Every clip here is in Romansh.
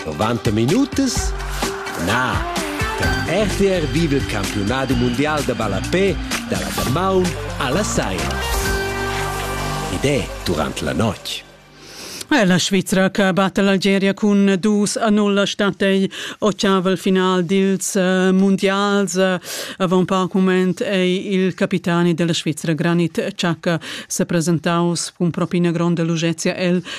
90 minutas? Na, per RTR viva il campionat mondial da ballapé dalla damaun alla saira. Ed è durant la notg. La Svizra che batte l'Algeria cun dus a null stat ei ocavel final dils eh, mondials. Avant poc moment ei il capitani della Svizra Granit Xhaka se presentaus cun propina gronda lugezia el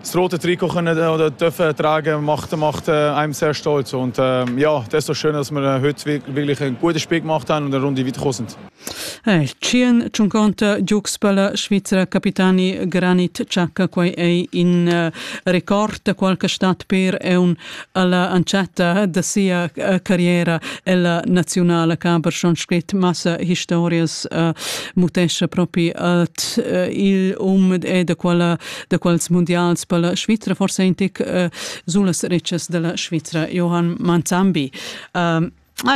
das rote Trikot können oder dürfen tragen, macht, macht äh, einem sehr stolz. Und äh, ja, das ist so schön, dass wir heute wirklich einen guten Spiel gemacht haben und eine Runde weiter gekommen sind. Hey, Chien Ciunconta Giuxpala, Svizzera capitani Granit Ciacca, quai è in uh, record qualche stat per un alla ancietta da sia uh, carriera ella nazionale caber schon scrit massa historias uh, mutescia proprio at uh, il um e da quella da quels mundials per la Svizra, forse in tic uh, sulas ricas della Svizra, Johann Manzambi. Uh,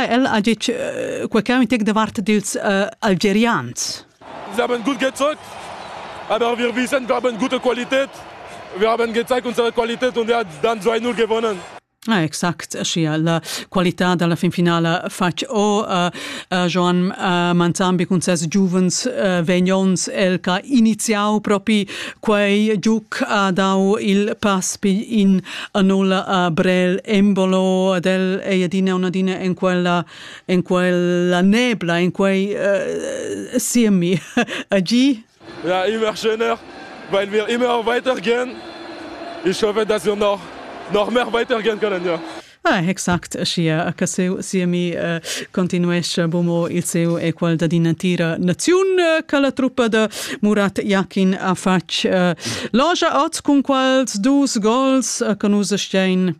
el ha dit uh, quel che un tic da parte dils uh, algerians. Wir haben gut gezeigt, aber wir wissen, wir haben gute Qualität. Wir haben gezeigt unsere Qualität und er hat dann 2-0 gewonnen. Ah, exact, sia la qualità dalla fin finala fatg o uh, uh, Joan uh, Manzambi cun ses giuvens uh, vegnons el che ha iniziau propi quei giuc ha dau il pass in a nulla a Brel Embolo ad el ei adina una dina en quella en quella nebla in quei uh, siemi a gi Ja, immer schöner, weil wir immer weitergehen. Ich hoffe, dass wir noch, noch mehr weitergehen können, ja. Ah, exact, sia che seu siemi eh, continuesce bomo il seu equal da din natira naziun eh, che la truppa de Murat Yakin ha fatg eh, loja oz cun quals dus gols eh, che nus stein